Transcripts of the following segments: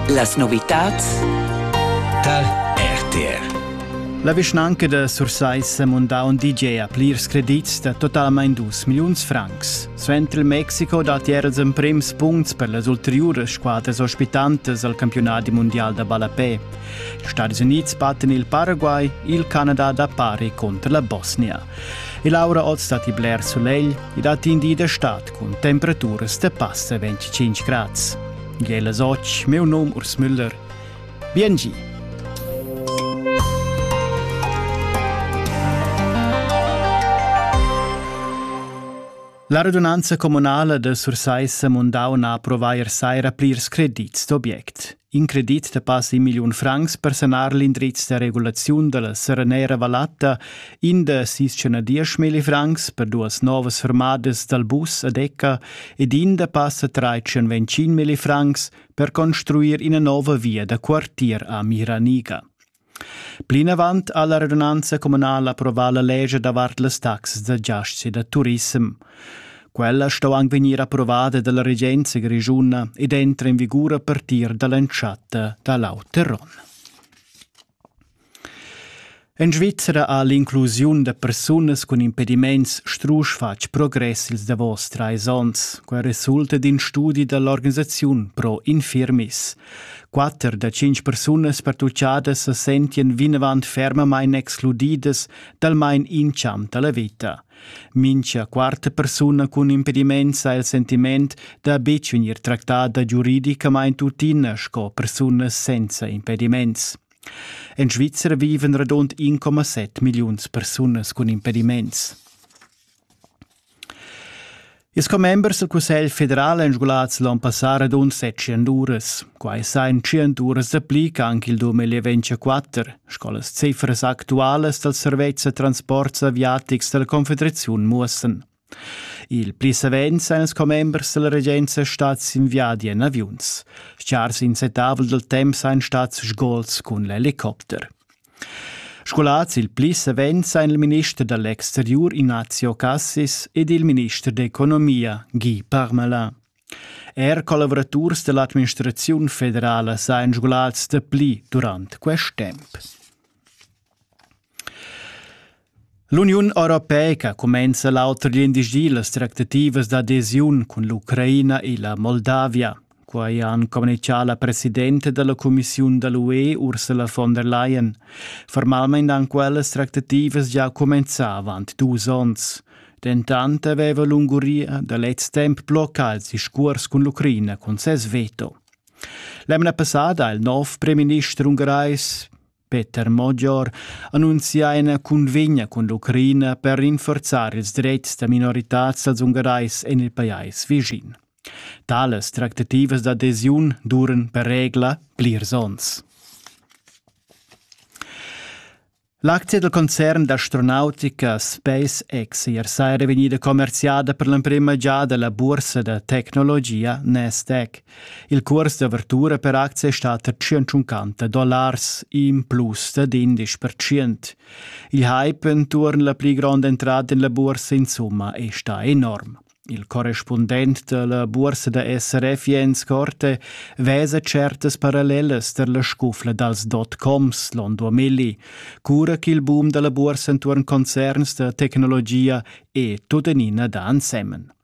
Las novitads tar RTR. La vischnanca da Sursaissa ha mondà un DJ a plirs credits da totalmain 2 milliuns francs. Suenter il Mexico datti era ils emprims punts per las ulteriuras squadras ospitantas al campionat mundial da ballapè. Ils Stati Unids battan il Paraguay, il Canada da pari contro la Bosnia. E Laura Oz datti bler sulegl e datti in di da stad Cun temperaturas da passa 25 grads. Gela soc, meu nom Urs Müller. Biengi! La radunanza communala de Sursaissa Mundau na provair saira plirs credits d'obiect. In credit da passa in milliun francs per sanar l'indriz da regulaziun da la Serenera Vallatta, in da sis cena dieschmilli francs per duas novas fermadas dal bus a Decca ed in da passa trais milli francs per construir ina nova via da quartier a Miraniga. Plinavant ha la radunanza communala approvà la lescha davart las taxas da giasts e da turissem. Quella sto anc vegnir approvada dalla regenza grischuna ed entra en vigur a partir dall'entschatta da l'auter onn. En Svizzera ha l'inclusiun da persunas cun impediments strusch fatg progress ils davos trais onns. Quai resulta d'in studi da l'organisaziun Pro Infirmis. Quatter da tschintg persunas pertuchadas sa sentien vinavant fermamain excludidas talmain intscham da la veta. Mincha quarta persuna cun impediment sa il sentiment da betg vegnir tractada giuridicamain tuttina sco persunas senza impediments. En Svizzera viven radund 1,7 milliuns persunas cun impediments. Ils commembers dal Cussegl federal èn sgulats l'onn passà radund setschen uras. Quai sa en tschient uras dapli ch'anc il 2024, sco las cifras actualas dals servetschs da transports aviatics da la Confederaziun muossan. Il pli savens èn ils commembers dalla regenza stads in viadi en aviuns. Stgars insettavel dal temp ein stads sgols cun l'helicopter. Scolars il pli savens ein il minister dall'exteriur Ignazio Cassis ed il minister d'economia Guy Parmelin. Er collavuraturs dall'administraziun federala sein scolars dapli durant quest temp. L'Uniun europeica cumenza l'auter glindisdi las tractativas d'adesiun cun l'Ucraina e la Moldavia. Quai han communichà la presidenta da la cumissiun da l'UE Ursula von der Leyen. Formalmain han quellas tractativas già cumenzà avant dus onns. Dentant aveva l'Ungaria da lez temp bloccà il discurs cun l'Ucraina cun ses veto. L'emna passada ha il nov premierminister ungarais Peter Mogior annunzia ina cunvegna cun l'Ucraina per rinforzar ils dretgs da minoritads dals Ungarais en il pajais vischin. Tales tractativas d'adesiun duran per regla plirs onns. L'aczia del concern d'astronautica SpaceX ier saira vegnida commerziada per l'emprima giada la bursa da tecnologia Nasdaq. Il cuors d'avertura per acts è stat da tschientschun dollars, in plus da d'indisch percent. Il hype entuorn la pli gronda entrada en la bursa insumma è stà enorm. Il correspundent della bursa da SRF Jens Korte vesa certas parallelas tar la scufla dals dot-coms Londo Milli, cura ch'il boom dalla bursa intuorn concerns da tecnologia è tuttenina da ansemen.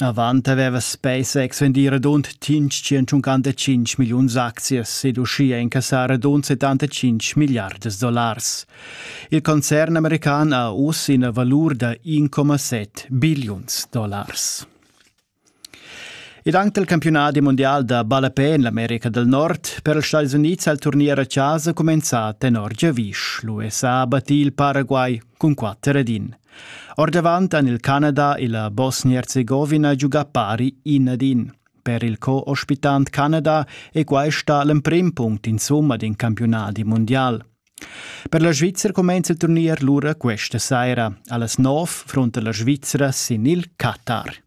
Avant haveva spess exvendir radund tschintschunquantacinc milliuns aczias ed uschia incassar radund settantacinc milliardas dollars. Il concern american ha uss ina valur da 1,7 billiuns dollars. Ed anche il campionat mondial da ballapè en l'America del Nord per els Stati Units al turnier a casa cumenzà tenor giavisch. L'USA ha battì il Paraguay cun quatter ed in. Ordavant han il Canada e la Bosnia-Herzegovina giugà pari in ad in. Per il co-ospitant Canada è questa l'emprim punct insumma d'in campiunadi mondial. Per la Svizzera cumenza il turnier lura questa saira. Allas 9 fronta la Svizzera sin il Qatar.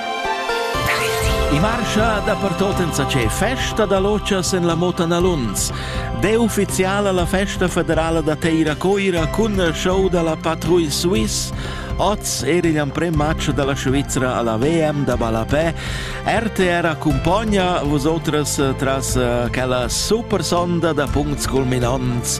I marscha dapertot insatgè festa da lotschas en la Mota Naluns. De ufficiala la festa federala da Teira Coira cun show da la Patrouille Suisse. Oz era igl amprem match dalla Svizzera alla VM da ballapè. RTR accompagna vosotras tras quella super sonda da puncts culminants.